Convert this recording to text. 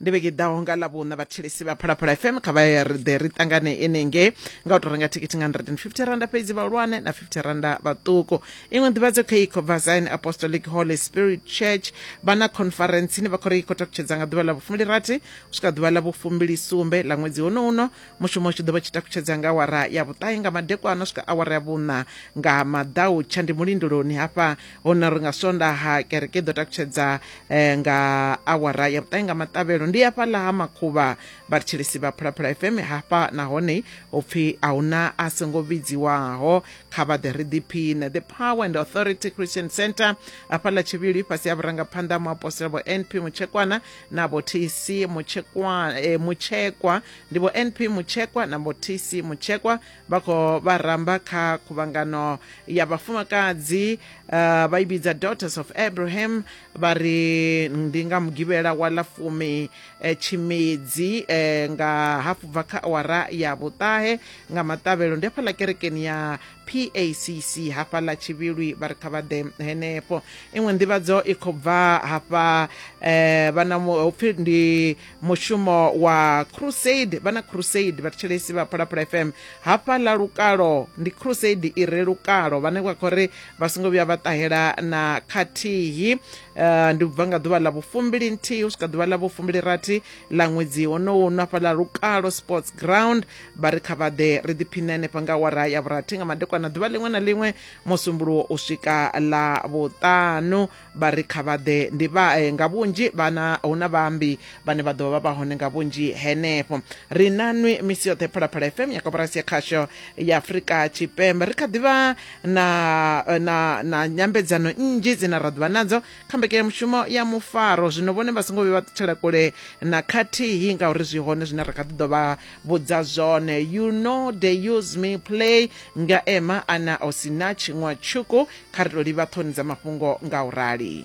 ndi vhege ḓaho nga ḽavhuṋa vhathetshelesi vha phalaphala fm kha vha ya ḓe ri ṱangane enenge nga u tou renga thikhithi nga 150 randa fhedzi vhahulwane na 50 randa vhaṱuku iṅwe nḓivhadzo kha ikho vazine apostolic holy spirit church vha na conference ine vha khou ri i khou takutshedza nga ḓuvha ḽa vhufumili rathi u swika ḓuvha ḽa vhufumili sumbe ḽa ṅwedzi hono uno mushumo u tshi ḓo vha tshi takutshedza nga awara ya vhuṱahe nga madekwana u swika awara ya vhuṋa nga maḓautsha ndi mulindoloni hafha hone ri nga swondaha kereke i ḓo takutshedza eh, nga awara ya vhuṱahe nga maṱavhelo ndi hafhaḽa ha makhuvha vhathetshelesi vha phulaphula fm hafha nahone u pfhi a huna a songo vhidziwaho kha vha ḓe ri ḓiphiṋe the power and authority christian center hafhaḽa tshivhili fhasi ha vhurangaphanḓa muapostola vho np mutshekwana na vho tc mutshekwa eh, mutshekwa ndi vho np mutshekwa na vho tc mutshekwa vha khou vha ramba kha khuvhangano ya vhafumakadzi uh, vha i vhidza daughters of abraham vha ri ndi nga mugivhela wa ḽa fumi eh, tshimedzi eh, nga hafu bva kha awara ya vhuṱahe nga maṱavhelo ndi hafhaḽa kerekeni ya pacc hafhaḽa tshivhilwi vha ri kha vha ḓe henefho iṅwe nḓivhadzo i khou bva hafha eh, vha na mu- hupfi ndi mushumo wa crusade vhana crusade vhathetshelesi vha phalaphala fm hafha ḽa lukalo ndi crusade i re lukalo vhane vha khou ri vha songo vhuya vha ṱahela na khathihi uh, ndi bva nga ḓuvha ḽa vhufumbili nthihi u swika ḓuvha ḽa vhufumbili rathi ḽa ṅwedzi honowu no hafha ḽa lukalo sports ground vha ri kha vhaḓe ri ḓiphine hanefha nga wara ya vhurathi nga madekwana ḓuvha ḽiṅwe na ḽiṅwe musumbuluwo u swika ḽa vhuṱanu vha ri kha vha ḓe ndi vha eh, nga vhunzhi vhana hu na vhaambi vhane vha ḓovha vha vha hone nga vhunzhi henefho ri na nwi misi yoṱhe phalaphala fm ya koporasi ya khasho ya afurika tshipembe ri kha ḓivha na, eh, na, na nyambedzano nnzhi dzine ra ḓuvha nadzo kha mbekanyamushumo ya mufaro zwino vhone vha songo vhe vha ṱutshela kule na khathihi ngauri zwi hone zwine ra kha ḓi ḓo vha vhudza zwone you know they use me play nga ema ana o sina tshiṅwa tshuku kha ri tou livha ṱhoni dza mafhungo nga u rali